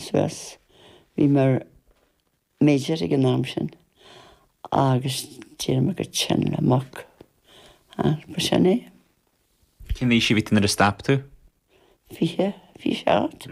Suas. Bhí mé ar major ag an am sin agus d'éirigh mé go tinn le muc. Ach ba sin é. Cén aois a bhí tú nuair a stop tú? Fiche, fiche seacht,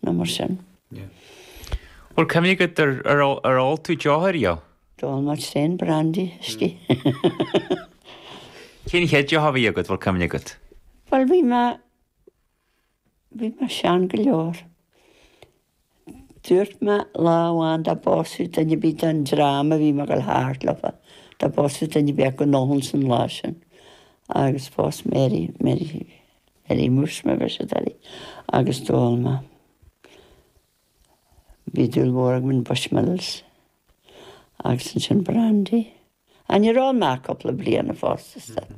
nó mar sin. Bhfuil cuimhne agat ar ar ól tú deoch ariamh? D'ól mé tréan brandy, uiscí. Cén chéad deoch a bhí agat, bhfuil cuimhne agat? Bhuel bhí mé. Bhí mé sean go leor. Dúirt mé lá amháin dá bpósfaí duine ar bith den dream a bhí mé ag dul thart leofa, dá bpósfaí duine ar bith acu go n-ólfainn an lá sin. Agus phós Mary, Mary, Mary Muiris mar a bheir siad uirthi, agus d'ól mé. Bhí dúil mhór agam in Bushmills. Agus ansin brandy. Ah, ní raibh ann ach cúpla bliana fosta, is dóigh.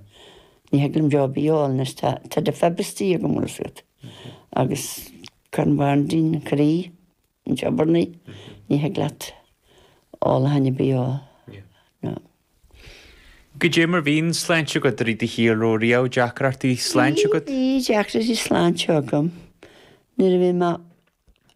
Ní thig liom deoch ar bith a ól anois, tá, tá defib istigh agam, bhfuil a fhios agat. Agus cuireann brandy an croí in jeopardy, ní thig leat ólachán ar bith a ól. No. Goidé mar a bhí an tsláinte agat i rith do shaoil, raibh riamh deacrachtaí sláinte agat? Bhí, bhí deacrachtaí sláinte agam nuair a bhí mé,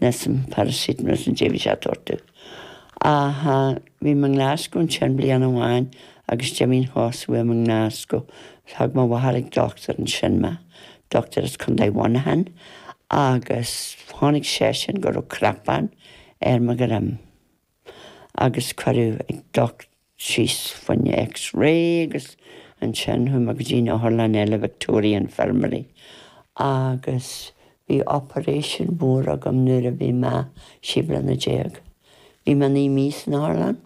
Measaim, paracetamol is an té a bhí sé ag tabhairt domh. Ach bhí mé i nGlasgow ansin bliain amháin agus d'imigh na cosa uaim i nGlasgow. Thug mo mháthair ag dochtúir ansin mé, dochtúir as Contae Mhuineacháin, agus chonaic seisean go raibh cnapán ar mo dhroim agus cuireadh ag dochtúir. síos fá choinne X-ray agus ansin chuaigh mé go dtí an otharlann eile, Victoria Infirmary, agus bhí operation mór agam nuair a bhí mé trí bliana déag. Bhí mé naoi mí san otharlann.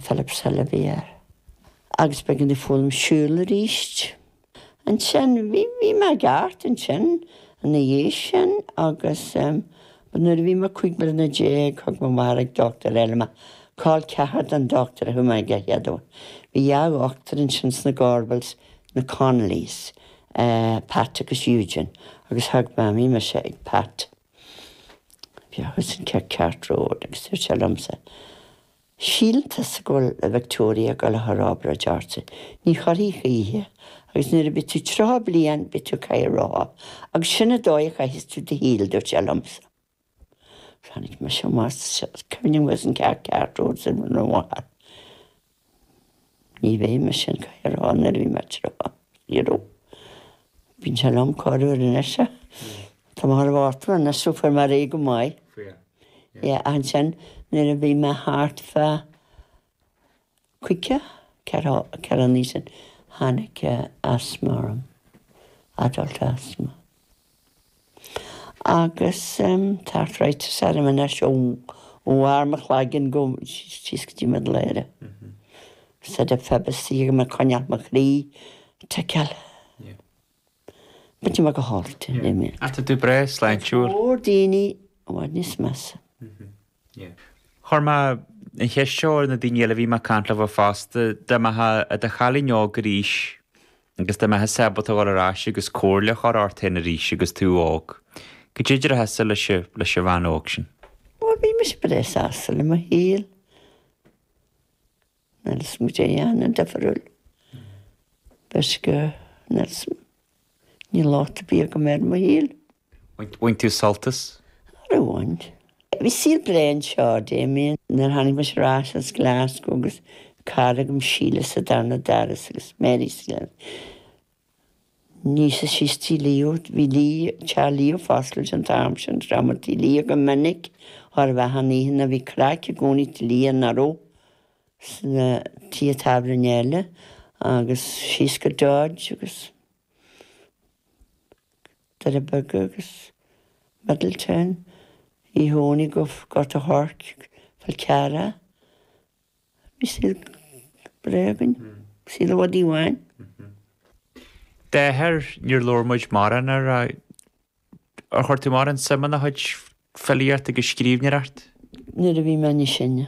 Philipshill a bhí air. Agus b'éigean domh foghlaim siúl aríst. Ansin, bhí, bhí mé i gceart ansin ina dhiaidh sin agus em, but nuair a bhí mé cúig bliana déag, thug mo mháthair ag dochtúir eile mé, col ceathar don dochtúir a thug mé aige a chéaduair. Bhí dhá dhochtúir ansin sna Gorbals, na Connollys, eh, Pat agus Eugene, agus thug mé, bhí mise ag Pat, bhí, thuas in Cathcart Road agus dúirt sé liomsa, Shíltear sa gCoill Victoria go leathair ábhar a deárte, ní chuirfidh gaoithe, agus nuair a bhí tú tríocha bliain bhí tú caidhe rotha, agus sin a dóigh a chaithfeas tú do shaoil dúirt sé liomsa. Tháinig mise amach sa cuimhne agus an ceart ceart uair san uair an mhaith. Ní bheidh mise in caidhe rotha nuair a bhí mé tríocha, zero. Bíonn sé lom corruair anois. Tá mé thar bharr tinn anois, so beidh mé go maith. Yeah, ansin nuair a bhí mé thart fá caoga ceathair, ceithre bliana ó shin, tháinig asthma orm, adult asthma. Agus tá arthritis orm anois ó bharr mo chloiginn síos go dtí mo ladhra, so fad is a bheas siad ag coinneáil mo chroí ag ticeáil. Beidh mé go hálainn, le mé. Tá tú breá sláintiúil. Tá go leor daoine i bhfad níos measa. Chuir mé an cheist seo ar na daoine eile a bhí mé ag caint leo fosta, dá mbeifeá i do chailín óg arís agus dá mbeifeá ábalta a dhul ar ais agus comhairle a chur ort féin arís agus tú óg, cad é déarfása leis an bhean óg sin? Bhuel, bhí mise breá sásta le mo shaol. Níl 'fhios a'm cad é a dhéanfainn difriúil. Because, níl 'fhios a'm, ní raibh lá buartha agam ar mo shaol. Bhain tú sult as? Ó bhain. Bhí saol breá anseo, Damien, nuair a tháinig mise ar ais as Glasgow agus cara agam, Síle, sa darna doras agus Mary sa gceann níos sia síos, tí Leo, bhí teach Leo foscailte an t-am sin, rachaimis tí Leo go minic ar feadh na n-oícheanna, bhí craic i gcónaí i dtí Leo nó sna tithe tábhairne eile agus síos go Dodge agus. Doire Beag agus Middletown, tí Dhónaill, Gort an Choirce, Fál Carrach. Bhí saol breá againn, saol ar dóigh. M'athair, níor labhair muid mórán air. Ar chuir tú mórán suim ina chuid filíocht agus scríbhneoireacht? Nuair a bhí mé níos sine.